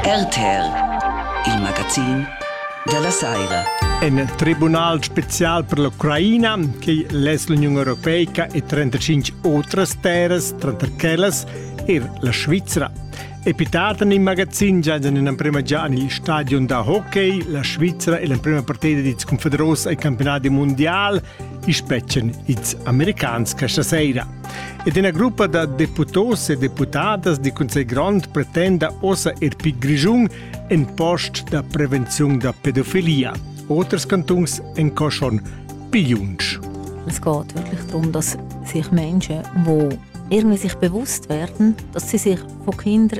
RTR, il magazin della Saira. En tribunal special per l'Ucraina, che l'es l'Union Europeica e 35 otras terres, tranter quellas er la Svizzera. Epitatan in magazin già in prima già negli stadion da hockey, la Svizzera è l'emprima partita di confederos ai campionati mondiali i spetgan ils americans questa sera. Ed ina gruppa da deputos e deputadas di Consiglio Grande pretenda ossa er pi Grischun en post da prevenzione da pedofilia. Oters cantons en Coschon pigliunsch. Es geht wirklich darum, dass sich Menschen, die irgendwie sich bewusst werden, dass sie sich von Kindern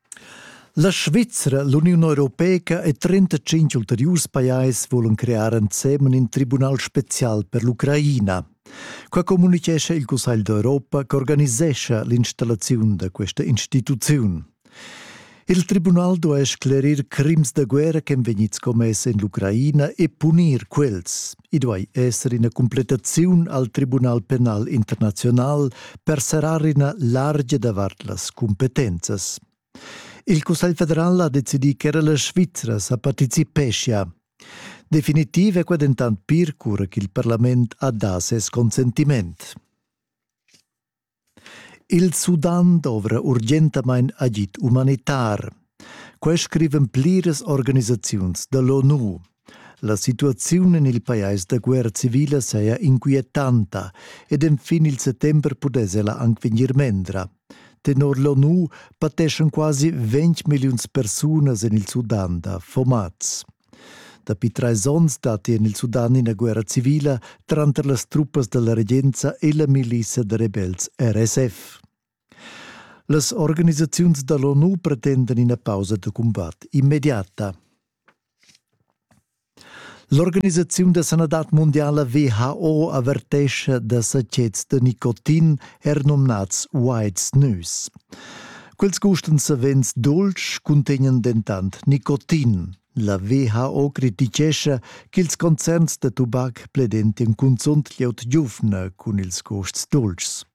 La Svizra, l'Uniun europeica e 35 ulteriurs pajais vulan crear ensemen in tribunal special per l'Ucraina. Qua communitgescha il Cussegl d'Europa ch'organisescha l'installaziun da questa instituziun. Il tribunal duai sclerir crims da guerra ch'èn vegnids commess en l'Ucraina e punir quels. I duai esser ina completaziun al Tribunal penal internaziunal per serrar ina largia davart las cumpetenzas. Il Cussegl federal ha decidì ch'era la Svizra sa participeschia. Definitiv è qua dentant pir cura ch'il parlament ha dà ses consentiment. Il Sudan dovra urgentamain agid umanitar. Quai scrivan pliras organisaziuns da l'ONU. La situaziun en il pajais da guerra civila saja inquietanta ed enfin il settember pudess ella anc vegnir mendra. Tenor l'ONU pateschan quasi 20 milliuns persunas en il Sudan da fomaz. Dapi trais onns datti en il Sudan ina guerra civila tranter las truppas da la regenza e la milizia da rebels RSF. Las organisaziuns da l'ONU pretendan ina pausa da cumbat immediata. L'organisaziun da sanadad mondiala WHO avertescha da sachets da nicotin, er numnads White Snus. Quels gusten savens dolci cuntegnan dentant nicotin. La WHO criticescha ch'ils concerns da tubac pledentian cunzunt glieud giuvna cun ils gusts dolcis.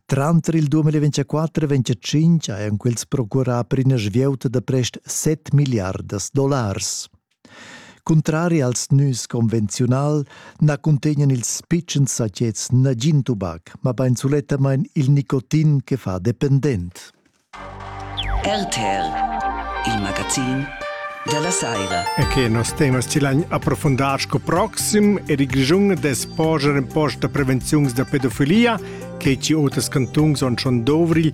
Tranter il 2024 e 2025 hajan quels procurà per ina svieuta da prest 7 milliardas dollars. Cuntrari als nüs convenziunal na cuntegnan ils pitschens sachets nagin tubac, mabain sulettamain il nicotin che fa dependent. RTR, il magazin della saira. E che nos temas ci l'han approfondar sco proxim e il Grischun des poger in post da prevenziuns da pedofilia che ci oters cantuns on schon dovril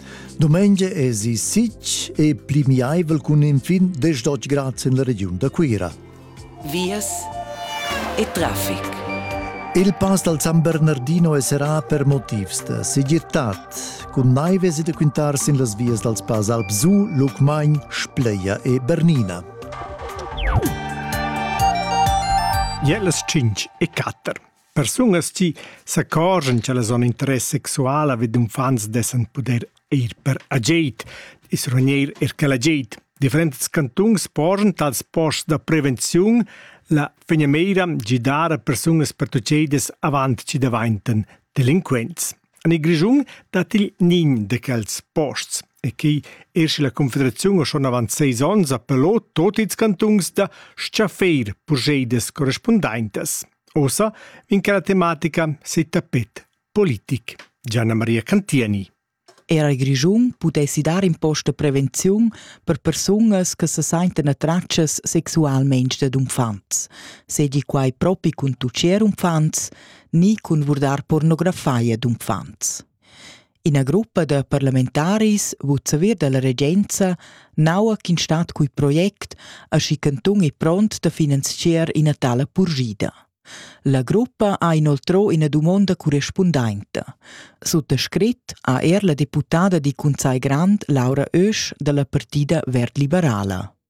Domengia esi sitg e plimiaivel cun infin 10 grad en la regiun da Cuira. Vias e traffic. Il pass dal San Bernardino è serà per motivs da segirtad. Cun naives e da quintar sin las vias dals pass Alpsu, Lucmagn, Spleia e Bernina. Jelas 5 e 4. Persunas chi s'accorgian cha la zona d'interess sexuala vi d'uffants dessan pudair ir per agid, i's rugneir eir quel agid. Differents cantuns porschan tals posts da prevenziun la finamira da dar a persunas pertuchedas avant chi davaintan delinquents. En il Grischun dat il nin de quels posts e che er la Confederazione schon avant seis ons appellò tot ils cantuns da schaffeir progedas correspondaintas. Ossa vegn che la tematica setapet politic. Gianna Maria Cantieni. Era il Grischun pudessi dar in post da prevenziun per persunas che se senten attraccias sexualmente dad uffants, sedi quai propi cun tuccer uffants ni cun vurdar pornografia d'uffants. Ina gruppa da parlamentaris vul saver dalla regenza naua ch'in stat cui project aschi cantun è pront da finanziar ina tala purgida. La gruppa ha inoltrò ina dumonda correspundenta. Suttascrit ha er la deputada di Conzai Grand Laura Oesch dalla partida verd liberala.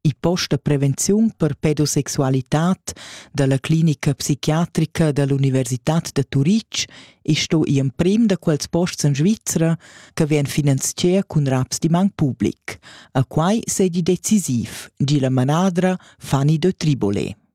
il post da prevenziun per pedosexualitad dalla clinica psichiatrica dall'Universitad da Turitg e sto i emprim da quels posts en Svizra che vien finanzier cun raps di man public. A quai sedi decisiv, di la manadra Fanny de Tribole.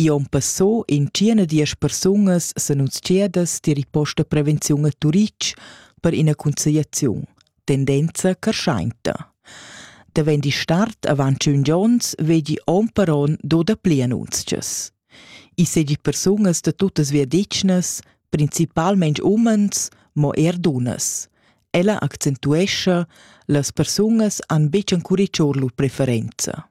I on passò intschiena diesch persunas s'annunzchiadas tier il post da prevenziun a Turitg per ina conciliaziun, tendenza carschainta. Davent il start avant tschun giorns vegi on per on do dapli annunzchas. I segi persunas da tuttas viadetschnas, principalment umens, mo er dunnas. Ella accentuescha, las persunas han betg ancuriccior lur preferenza.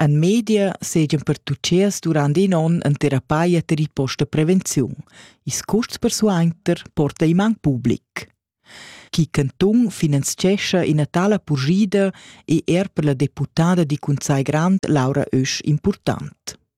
En media seigien per tutschers durant in onn en terapia ter posta prevenziun. Ils custs persuenter porta in man public. Chi cantun finanziescha ina tala purgida è er per la deputada di Cunzai Grand Laura Ösch important.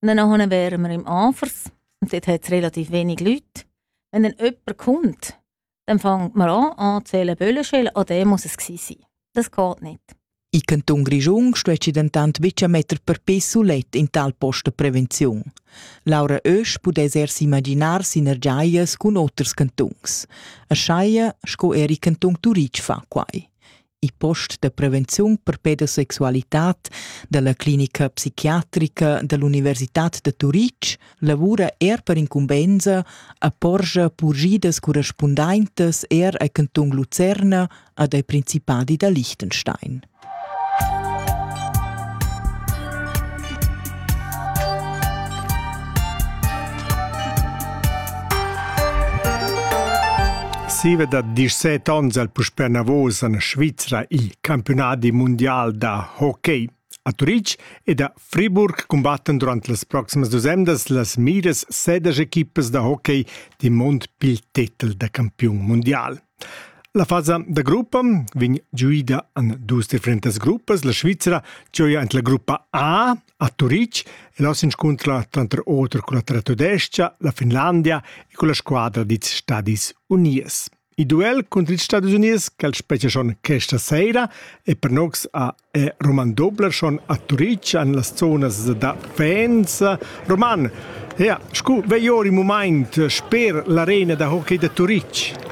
Wenn er ohne wären wir im Anfers und dort hat es relativ wenig Leute. Wenn dann jemand kommt, dann fängt man an anzählen Böllenschellen, ah, der muss es sein. Das geht nicht. In Kanton Grischung steht dentant bitte Meter per piss sulet in tal post prevenzion. Laura Oesch pudess er s'imaginar sinergiaias cun oters cantuns. A Schaia, sco er i cantun Turitg fa quai. il post da prevenziun per pedosexualitad dalla clinica psichiatrica dall'Universitad da Turitg lavura er per incumbensa a porscha purgidas correspundaintas er a Canton Lucerna ad ai Principadi da Liechtenstein. Siva da 17 ons el puspè navos en Svizra il campiunadi mundial da hockey. A Turitg ed a Friburg cumbattan durant las proximas dus emdas las miras sedas equipas da hockey di mond pil tetel da campiun mundial. La fasa da gruppa vegn giuida en dus differentas gruppas. La Svizra gioia en la gruppa A a Turitg e là s'inscuntra tranter auter con la Tratodescha, la Finlandia e con la squadra dils Stadis Unies. Il duel contro ils Stadis Unies, quel spetga schon questa sera e per nox a è Roman Dobler schon a Turitg en las zonas da Faenza. Roman, ja, scu vei ora il moment sper l'arena da hockey da Turitg?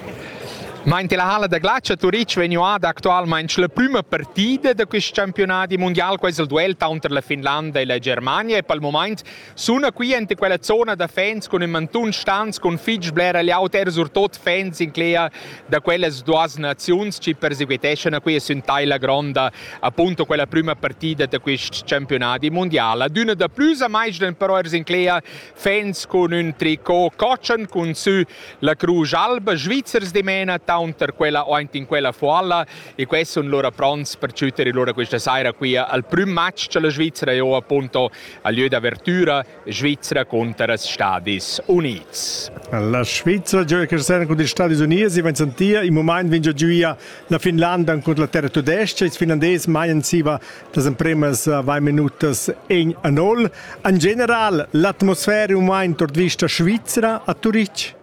Meinte la halla da glatscha Turitg vegnuada actualmain la prüma partida da quest campiunadi mundial, quais il duel taunter la Finlanda e la Germania e pel mumaint Suna qui enta quella zona da fans cun in mantun stans cun fitg blera liaut er surtot fans inclea da quellas duas naziuns che perseguiteschan qui sün taila gronda appunto quella prima partida da quist campionati mondial. D'una da plus a mais den però ers inclea fans cun un tricot cochan cun sü la Cruz Alba Schweizers dimena taunter quella o in quella foalla e questo sun lura pronts per ciuter lura questa saira qui al prüm match cha la Svizzera io appunto al lieu d'avertüra Svizra cunter els Stadis Unids. La Svizra gioia Cristiana cunter ils Stadis Unids e vegn sentia in mumaint vegn giuia la Finlanda cunter la terra tudesca. Ils finlandesi maian siva las empremas vai minutas en a nol. En general l'atmosfera è mumaint ord vista Svizra a Turitg.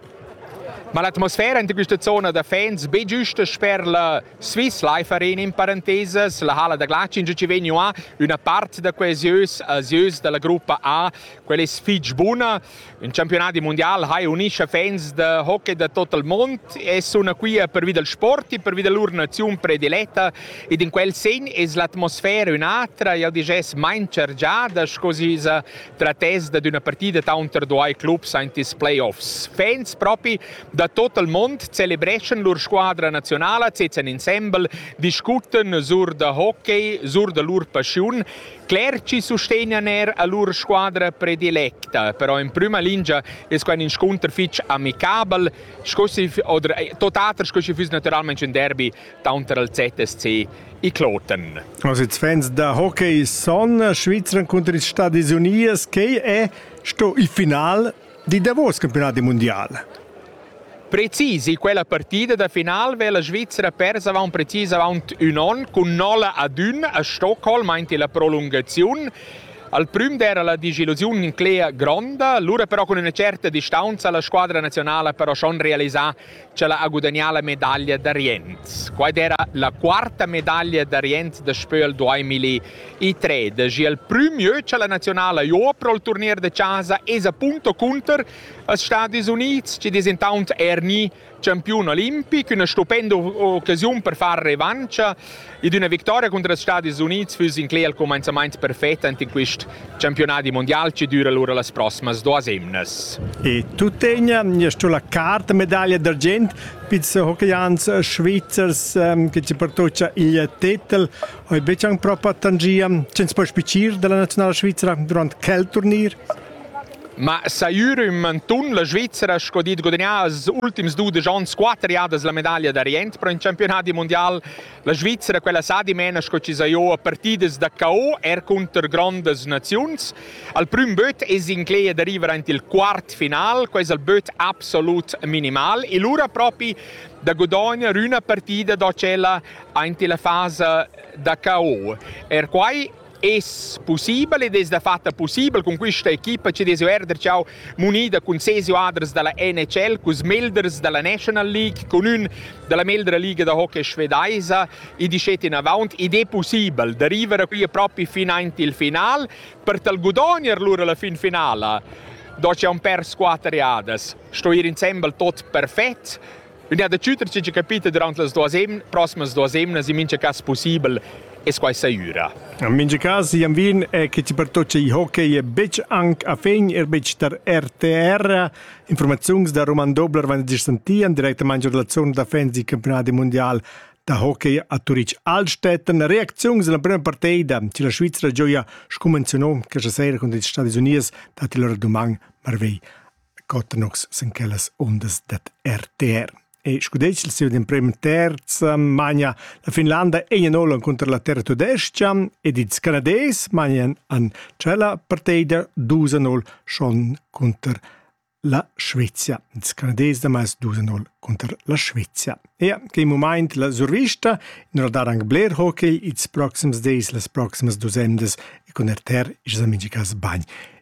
Ma l'atmosfera in questa zona da fans be giusta sper la Swiss Life Arena in parentesas, la hala da glatsch in ci vegnu a üna part da coesius asieus dalla gruppa A, quella es fich buna. In campionati mundial hai unisce fans da hockey da tot il mond e suna qui pervi dal sport e pervi da lur naziun prediletta ed in quel sen es l'atmosfera ün'atra, jau diges main chargiada sco si sa trattess dad üna partida taunter duai clubs aint ils playoffs. Fans propi Da tot il mond celebreschan lur squadra nazionala, sezzan insembel, discuttan sur da hockey, sur da lur passiun. Clerci sustegnan er a lur squadra predilecta, però in prima lingia è quai in scontr fitg amicabel, oder eh, totater sco si füss naturalmente un derby taunter al ZSC i Kloten. Also jetzt Fans da Hockey son Schweizer contra ils Stati Unidos, che è sto il final Di davos campionat mundial. Precis in quella partida da final veva la Svizzera pers avon precis avaunt ün on cun nolla ad ün a Stockholm aint la prolungaziun. Al prüm d'era la disillusiun inclea gronda, lura però cun üna certa distanza la squadra nazionala però schon realisà Ch'ella ha gudagnà la medaglia d'Ariens. Quai era la quarta medaglia d'Ariens daspö al 2003. Daji il prümieu cha la naziunala jo pro il turnier da chasa es appunto cunter als Stadis Unids chi es intaunt eir gni champiun olimpic, üna stupenda occasiun per far revancha Ed üna victoria cunter els Stadis Unids füss incler il cumainzamaint perfet ant in quist campiunadi mundial chi düra lura las prossimas duas emnas. E tuttegna, sto la carta medaglia d'argient pizs hockeyans svizzers ehm, che ci pertoccia il titel oi becang proprio tangia cens puoi spicir della nazionale svizzera durante quel turnier Ma saiur ün mantun la Svizzera sco dit gudagnà als ultims dudesch ans quatter jadas la medaglia d'Orient pro in campionati mundial La Svizzera quella sa dimena sco ci sa io a partidas da KO er counter grandas naziuns. Al prüm böt es incleia da river aint il quart final, quais al böt absolut minimal e lura propi da godognar üna partida da tschella aint la fasa da KO. Er quai Es possibel ed es da fatta possibel cun questa equipa ci desu erder ciao munida cun ses joaders da la NHL, cus melders da la National League, con ün da la meldra liga da hockey svedaisa, i dischet in avant, id è possibel da river qui propi fin aint il final, per tal gudogner lura la fin finala. Do c'è un per squatter jadas. Sto ir insembel tot perfett, L'idea da tschüter chi capita durant las duos emn, prossimas duos emnas in mincha cas pussibel es quai saiura. In mincha cas, Jan Wien, è che ti pertoccia il hockey betg anche a fin, er betg tar RTR. Informazioni da Roman Dobler van dir sentian direttamente in relazione da fans del campionat mondial da hockey a Turitg Altstätten. Reakzioni della prima partita che la Svizzera gioia scumenziona questa sera con gli Stati Uniti dati loro domani marvei Cottanox sin quellas undas dad RTR. E scudetg il siu d'emprem terz magna la Finlanda Enianol cunter la terra tudescha ed ils Canadais magnan an tschella partida 2-0 schon cunter la Svezia. Ils Canadais damais 2-0 cunter la Svezia. Ja, che in moment la survista in radar anche Blair Hockey ils proxims days, las proximas dusendas e con RTR is amicicas bagn.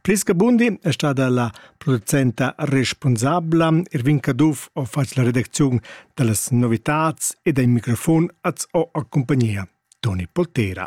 Plis che bundi è stada la producenta responsabla Irvin Caduff ho fatg la redacziun da las novitads e dal microfon az ho accumpagnia Toni Poltera.